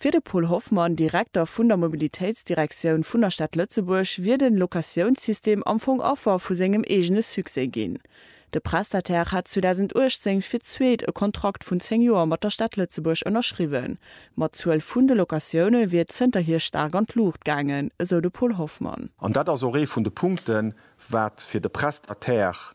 Fir de Paul Hoffmann, Direkter vun der Mobilitéitsdirektioun vun der Stad Lëtzebuerg, wier de Locatiounssystem am Fong Affer vu sengem eegene Succès ginn. De Prestataire hat 2018 fir d'zweet e Kontrakt vun 10 Joer mat der Stad Lëtzebuerg ënnerschriwwen, ma d'Zuel vun de Locatioune wier zënterhier staark an d'Luucht gaangen, esou de Paul Hoffmann. An dat ass och ee vun de Punkten, wat fir de Prestataire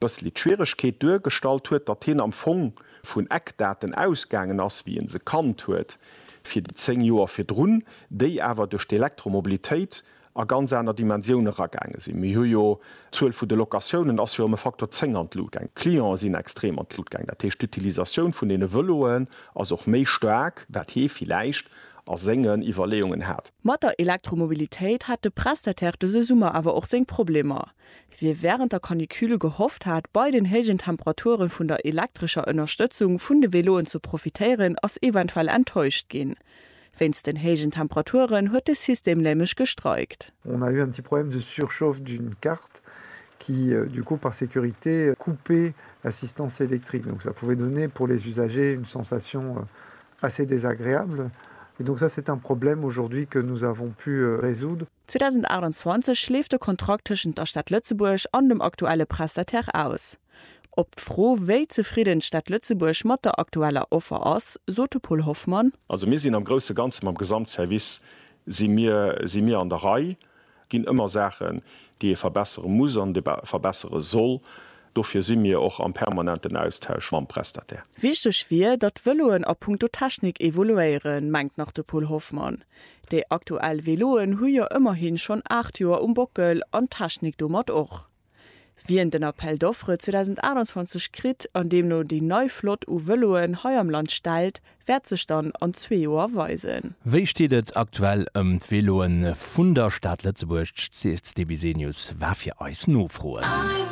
bëssli d'Schwieregkeet duergestallt huet, datt hien am Fong vun Eckdaten ausgaangen ass, wéi e se kannt huet fir déi 10 Joer virdrun, déi awer duerch d'Elektromobilitéit a ganz aner Dimensioun eragaange sinn. Mir hu jo, d'Zuel vu de Locatiounen ass jo ëm e Faktor 10 an d'Lut gaang, d'Clientë sinn extrem an d'Lut gaang, dat heescht d'Utilisatioun vun deene Vëloen ass och méi staark, wat hie villäicht a sengen Iwwerleeungen hat. Mat der Elektromobilitéit hat de Prestataire dëse Summer awer och seng Problemer. Wie während der Canicule gehofft hat, bei den héijen Temperaturen vun der elektrescher Ënnerstëtzung vun de Veloen ze profitéieren, ass eventuell enttäuscht ginn. Wéinst den héijen Temperaturen huet de System nämlech gestreikt. On a eu un petit problème de surchauffe d'une carte qui du coup par sécurité coupait l'assistance électrique donc ça pouvait donner pour les usagers une sensation assez désagréable et donc ça c'est un problème aujourd'hui que nous avons pu résoudre. 2028 leeft de Kontrakt tëschent der Stad Lëtzebuerg an dem aktuelle Prestataire aus. Op d'Fro, wéi zefridden d'Stad Lëtzebuerg mat der aktueller Offer ass, sot de Paul Hoffmann. Also mir sinn am grousse Ganze mam Gesamtservice si mir si mir an der Rei. Et ginn ëmmer Saachen, déi ee verbessere muss an verbessere soll. Dofir si mir och am permanenten Austausch mam Prestataire. Wichteg wier, datt d'Vëloen a punkto Technik evoluéieren, mengt nach de Paul Hoffmann. Déi aktuell Veloen hu jo ëmmerhin schonn 8 Joer um Bockel an d'Technik domat och. Wien den Appel d'offres 2028 kritt an deemno déi nei Flott u Veloen hei am Land stellt, wäert sech dann an zwee Joer weisen. Wéi steet et aktuell ëm d'Veloen vun der Stad Lëtzebuerg? D'Cdbsenius war fir eis nofroen.